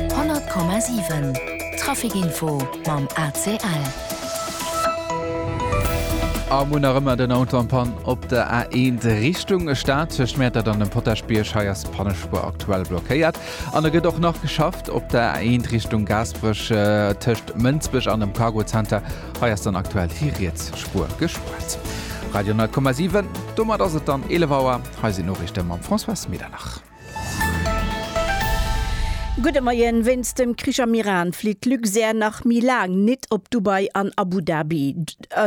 100,7 Traficinfo mam ACL. A Munn nach ëmmer den Auto am Pann op der A1 Richtung Stad tëscht Mäertert an dem Potaschbierg. Hei ass d'Pannespuer aktuell blockéiert an e gëtt och nach geschafft op der A1 Richtung Gaasperech äh, tëscht Mënsbech an dem Cargo Center. Hei ass dann aktuell déi riets Spuer gespuert. Radio 10,7, domat ass et dann 11 Auer. Hei sinn d'Noriichte mam François Medernach. Gudde Moien, Wéinst dem Krich am Iran flitt d'Luxair nach méi laang nit op Dubai an Abu Dhabi.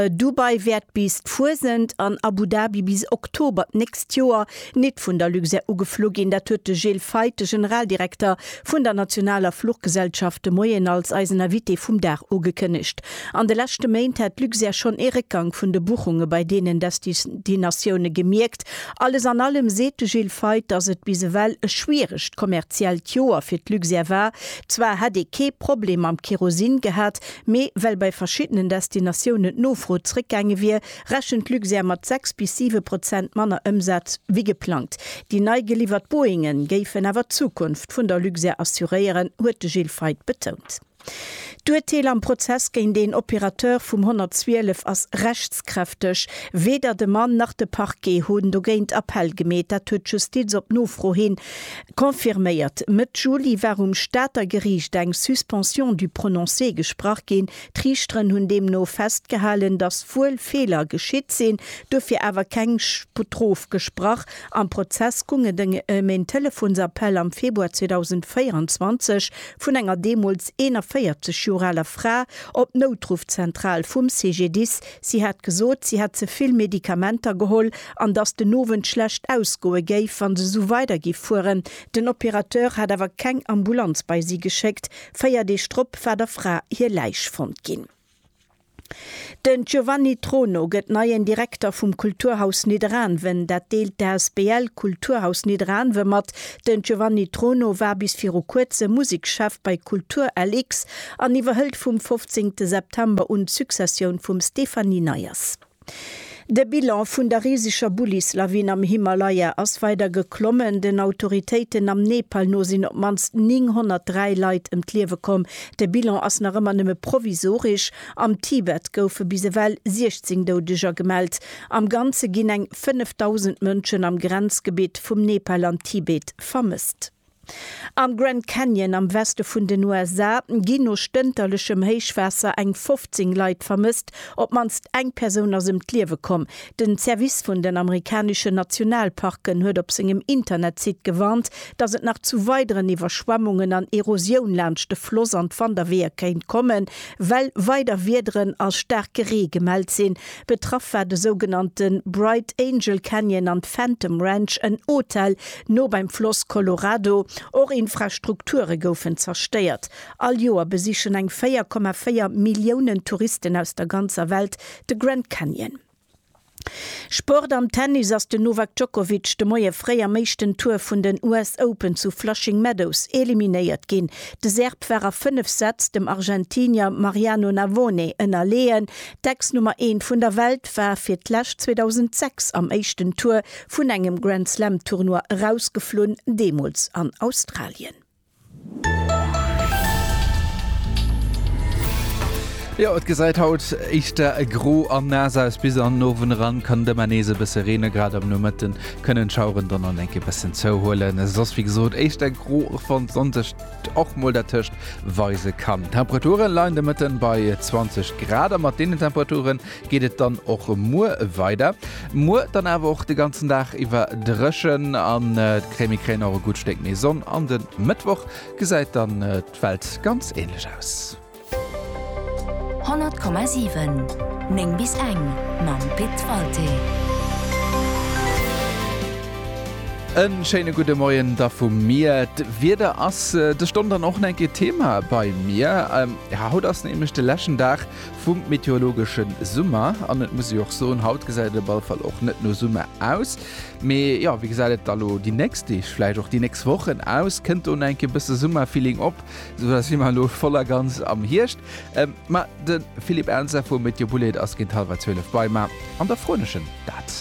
Dubai wäert bis d'Fuesent an Abu Dhabi bis Oktober d'nächst Joer nit vun der Luxair ugeflu ginn. Dat huet de Gilles Feith, de Generaldirekter vun der nationaler Fluchgesellschaft de Moien als eisen Invité vum Dag ugekënnegt. An de leschte Méint hätt d'Luxair schonn ee Réckgang vun de Buchunge bei deenen Destinatioune gemierkt Alles an allem seet de Gilles Feith, datt et bis ewell e schwieregt kommerziellt Joer fir d'Luxair war. Zwar hätt ee kee Problem mam Kerosin gehat, mee well bei verschiddenen Destinatiounen d'Nofro zréckgaange wier, rechent d'Luxair mat 6 bis 7 Prozent manner Ëmsaz wéi geplangt. Déi nei geliwwert Boeinge géifen awer d'Zukunft vun der Luxair assuréieren, huet de Gilles Feith betount. D'Urteel am Prozess géint een Opérateur vum 112 ass rechtskräfteg. Weder de Mann nach de Parquet hunn dogéint Appell gemeet. Dat huet d'Justiz op Nofro hi confirméiert. Mëtt Juli war um Stater Geriicht eng Suspension du prononcé gesprach ginn. D'Riichteren hunn deemno festgehalen, datt wuel Feeler geschitt sinn, duerfir awer keng Strof gesprach. Am Prozess goung et ëm een Telefonsappell am Februar 2024, vun enger deemools 41 Joer aler Fra op d'Noutruffzentral vum CGDIS. Si hat gesot, si hätt ze vill Medikamenter geholl an dass den Owend schlecht ausgoe géif, wa se esou weider géif fueren. Den Opérateur hat awer keng Ambulanz bei si geschéckt. Véier Deeg drop war der Fra hir Läich fonnt ginn. Den Giovanni Trono gëtt neien Direkter vum Kulturhaus Nidderaanwen. Dat deelt d'Asbl Kulturhaus Nidderaanwen mat. Den Giovanni Trono war bis viru kuerzem Musekschef bei Kultur LX an iwwerhëlt vum 15 September un d'Successioun vum Stéphanie Neyers. De Bilan vun der riseger Bullis-Lawin am Himalaya ass weider geklommen. Den Autoritéiten am Nepal no sinn op d'mannst 903 Leit ëm d'Liewe komm. De Bilan ass nach ëmmer nëmme provisoresch. Am Tibet goufe bis ewell 16 Doudeger gemellt. Am Ganze ginn eng 5.000 Mënschen am Grenzgebitt vum Nepal an Tibet vermësst. Am Grand Canyon am Weste vun den USA ginn no stënterlechem Héichwaasser eng 15 Leit vermësst. Op d'mannst eng Persoun ass ëm d'Liewe komm. Den Service vun den amerikaneschen Nationalparken huet op sengem Internetsite gewarnt, datt et nach zu weideren Iwwerschwemmungen an Erosioun laanscht de Floss an d'Wanderweeër kéint kommen, well weider Wiederen a staarke Ree gemellt sinn. Betraff war de sougenannte Bright Angel Canyon an d'Phantom Ranch, en Hotel no beim Floss Colorado. Och Infrastrukture goufen zerstéiert. All Joer besichen eng 4,4 Milliounen Touristen aus der ganzer Welt de Grand Canyon. Sport Am Tennis ass den Novak Djokovic de Moie fréi am éischten Tour vun den US Open zu Flushing Meadows eliminéiert ginn. De Serb war a 5 Sätz dem Argentinier Mariano Navone ënnerleeën, D'Ex-Nummer eent vun der Welt war fir d'lescht 2006 am éischten Tour vun engem Grand Slam Tournoi erausgeflunn, deemools an Australien. Jo et gesäit haut éischter gro an naass aus. Bis an den Owend eran kann et ëmmer nees e bësse reenen. Grad am Nomëtte kënnen d'Schaueren dann an eng Kéier e bëssen zouhuelen. Soss wéi gesot éischter gro, wann d'Sonn sech. och mol dertëscht weise kann. D'Temperature leien de Mëtten bei 20 Grad a mat deenen Temperature geet et dann och muer weider. Muer dann awer och de ganzen Dag iwwer dréchen an d'Crèmi kréien och e gutt Stéck méi Sonn an de Mëttwoch gesäit dann d'Welt ganz änlech aus. 100,7 9 bis eng mam Pit Walté. E schéine gudde Moien da vu mir. D'Wieder ass de Stonn dann och eng Kéier Thema bei mir. Haut ass nämlech de leschten Dag vum meteorologesche Summer an et muss ee jo och soen, haut gesäit et op alle Fall och net no Summer aus. Mee jo, wéi gesäit et da elo déi nächst Deeg, vläicht och déi nächst Wochen aus? Kënnt do nach eng Kéier e bësse Summerfeeling op? Esou da si mer elo voll a ganz am Hierscht. Ma de Philippe Ernzer vu Météo Boulaide ass géint hallwer 12 bei mer an da froen ech en dat.